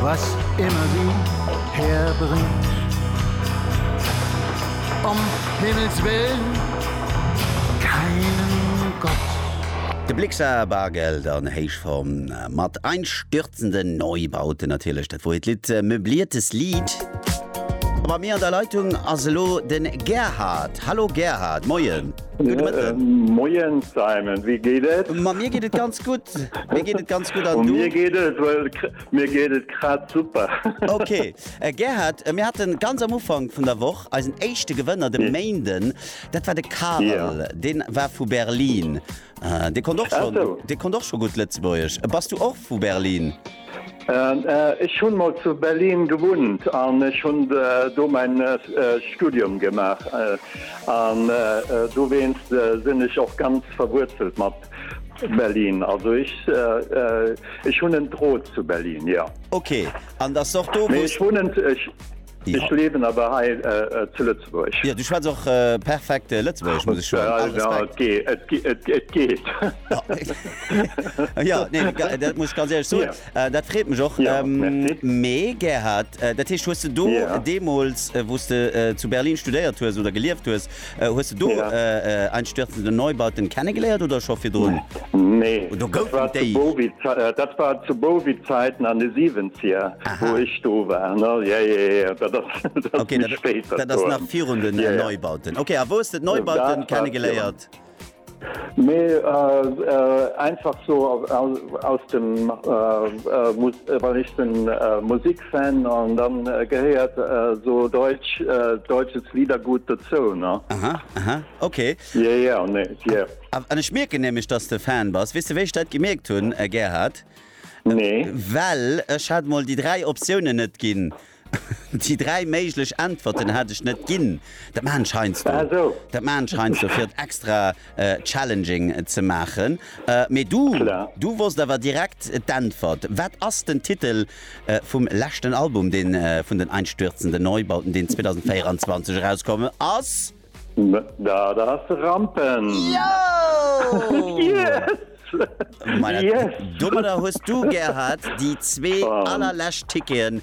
Was immer sie herbringt. Om Himmels willen keinen Gott. De Blixa, Bargeld an Héichform mat einstürzenden Neubauten, natierlech, dat wor hiert Lidd, Möbliertes Lied. A bei mir an der Leitung ass elo de Gerhard. Hallo Gerhard, Moien. Moien Simon, wéi geet et? Ma mir geet et ganz gutt. Mir geet et ganz gutt an du? Mir geet et well mir geet et grad super. Okay. Äh, Gerhard, äh, mir hatten ganz am Ufank vun der Woch eisen éischte Gewënner de Méinden. Dat war de Karel. Ja. Deen war vu Berlin. Äh, dee konnt och Ach schon, so. dee konnt och scho gutt Lëtzebuergesch. Bass du och vu Berlin? Ech hunn mol zu Berlin gewunnt an ech hunn do mäin Studium gemaach an dowéinst sinn ech och ganz verwuerzelt mat Berlin. Also ech hunn en Drot zu Berlin, jo. Ok, an dat ass och do wou s. Ech liewen awer hei zu Lëtzebuerg. Jo, du schwätz och perfekt Lëtzebuergesch, muss ech soen. All Respekt. Et geet. Jo, nee, dat muss ech ganz éierlech soen. Dat freet mech och. Mee Gerhard, dat heescht, hues de do deemools, wou s de zu Berlin studéiert hues oder gelieft hues, Hues de do einstürzende Neubauten kennegeléiert oder scho virdrun? Nee, dat war zu Bowie-Zäiten an de Siwenzieger, wou ech do war. Dat ass nach virun den Neubauten. Ok, a wou hues de d'Neubauten kennegeléiert? Mee einfach sou aus dem, wann ech den Musikfan an dann gehéiert sou Deutsch, deutsches Liedergut dozou ne. Aha aha ok. Yeah yeah ne yeah. An ech mierken nämlech dass de Fan bass. Weess de wéi ech dat gemierkt hunn Gerhard? Nee. Well ech hat mol déi 3 Optiounen net ginn Déi dräi méiglech Äntwerten hat ech net ginn. Dat maachen ech heiansdo. Dat maachen ech heiansdo, fir et extra challenging ze maachen. Mee du, du wosst awer direkt d'Äntwert. Wat ass den Titel vum leschten Album, dee vun den Einstürzende Neubauten, deen 2024 erauskomm ass? Dat ass Rampen! Yes! Domadder hues du, Gerhard, déi zwee allerlescht Ticketen,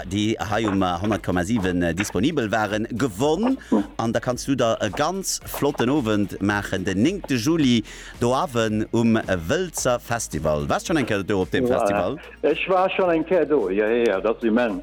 déi hei um 100,7 disponibel waren, gewonn. An da kanns du der e ganz flotten Owend maachen den 9 Juli do Owend um Wëlzer Festival. Waars schonn eng Kéier do op deem Festival? Ech war schonn eng Kéier do, jo, jo, dat ass immens.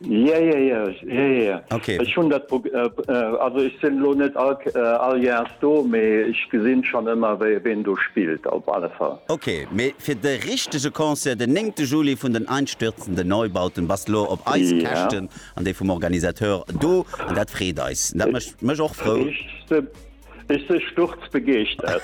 Yeah, yeah, yeah, yeah, yeah. Okay. Ech hunn dat pro, äh, äh, also ech sinn elo net all, äh, all Jahrs do, mee ech gesinn schonn ëmmer wéi, ween do spillt op alle Fall. Okay, mee fir de richtege Concert den 9 Juli vun den einstürzenden Neubauten bass de lo op eis Yeah. Käschten an déi vum Organisateur do an dat freet eis. Dat mécht mech och frou. Ech se, ech se sturzbegeeschtert.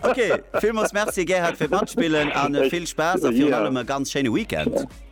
Okay, villmools Merci Gerhard fir d'Matspillen an Ech, vill Spaass a virun yeah. allem e ganz schéine Weekend.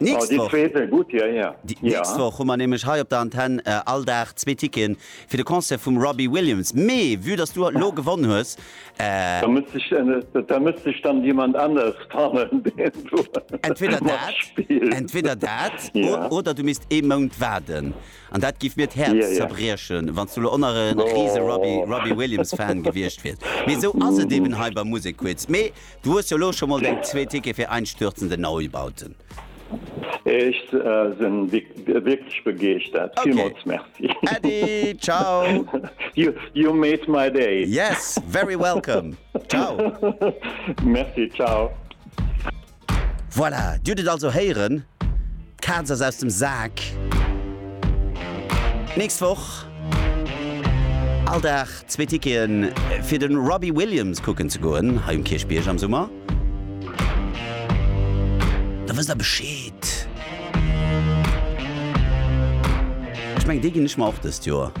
Nächst Woch hu mer nämlech hei op der Antenn all Dag zwee Ticketen fir de Concert vum Robbie Williams. Mee vue dass du elo gewonn hues. Da misst sech dann jemand anescht fannen, deen do matspillt. Entweder dat oder du misst ee Mount waarden. An dat géif mir d'Häerz zerbriechen, wann s du elo och nach e rise Robbie Williams-Fan gewiescht wiers. Mee esou ass et eeben hei bei Musekquiz. Mee Du hues jo elo scho mol deng zwee Tickete fir einstürzende Neubauten. Ech sen wierklech begeeschtert. Villmols merci. Ok Äddi, ciao. You made my day. Yes, very welcome. Ciao. Merci, ciao. Voilà, dir hutt et also héieren. D'Kaz ass aus dem Sak! Nächst Woch all Dag zwee Ticketen fir de Robbie Williams kucken ze goen hei um Kierchbierg am Summer. Da wësst der Bescheed! Ech mengen déi ginn ech mer och dëst Joer.